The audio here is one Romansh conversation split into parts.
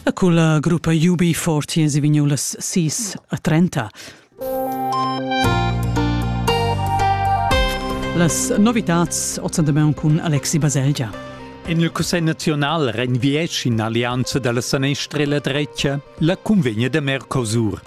E cun la gruppa UB40 si vignu las 6 a 30. Las novitats ozzandemeun cun Alexi Baselgia. En il Cussegl nazional renviesch in allianza dalla sanestra e la drecia la cunvegna da Mercosur.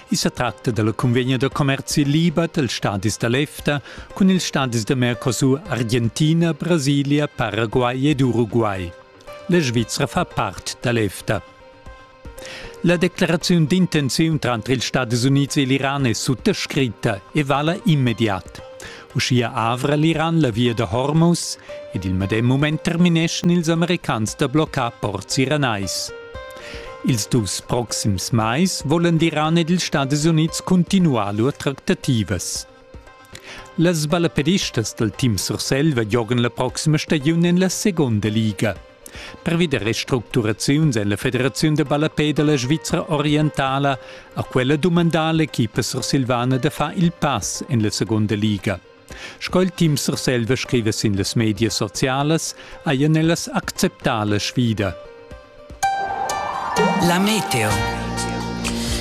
I sa tratta dalla convegna da commerzi liber dels stadis da l'EFTA cun ils stadis da Mercosur, Argentina, Brasilia, Paraguay ed Uruguay. La Svizra fa part da l'EFTA. La declaraziun d'intenziun tranter ils Stadis Unids e l'Iran è suttascritta e vala immediat. Uschia avra l'Iran la via da Hormuz ed il medem mument termineschan ils americans da bloccar ports iranais. Ils dus proxims mais volan l'Iran ed ils Stadis Unids cuntinuar lur tractativas. Las ballaperistas dal team Surselva giogan la proxima stagiun en la segunda liga. Pervi da restructuraziuns en la Federaziun da ballapè da la Svizra orientala ha quella dumandà l'equipa sursilvana da far il pass en la segunda liga. Sco il team Surselva scriva sin las medias socialas, hajan ellas acceptà la sfida. La Meteo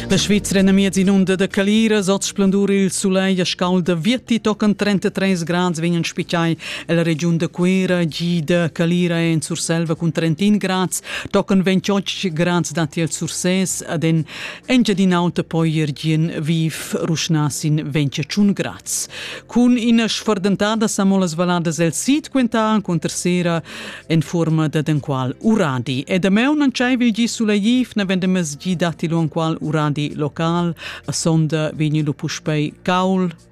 La Svizra è miez inunda da caliras, oz splendur il sulegl a scalda. Vieti tocan 33 grads vegnan spiccai Ella regiun da Cuera gida Calira en Surselva cun Trentin grads, tocan 28 grads datti al Sursès ad en Engiadin'Auta poi er gien viv ruschnasin 21 grads. Cun ina sfordentada samolas valadas el sid quentan conter sera en forma da denqual uradi. E da meu non c'è vigi suleiv, na vendemes gi datti lo qual uradi local, a sonda vegni lu puspei caul,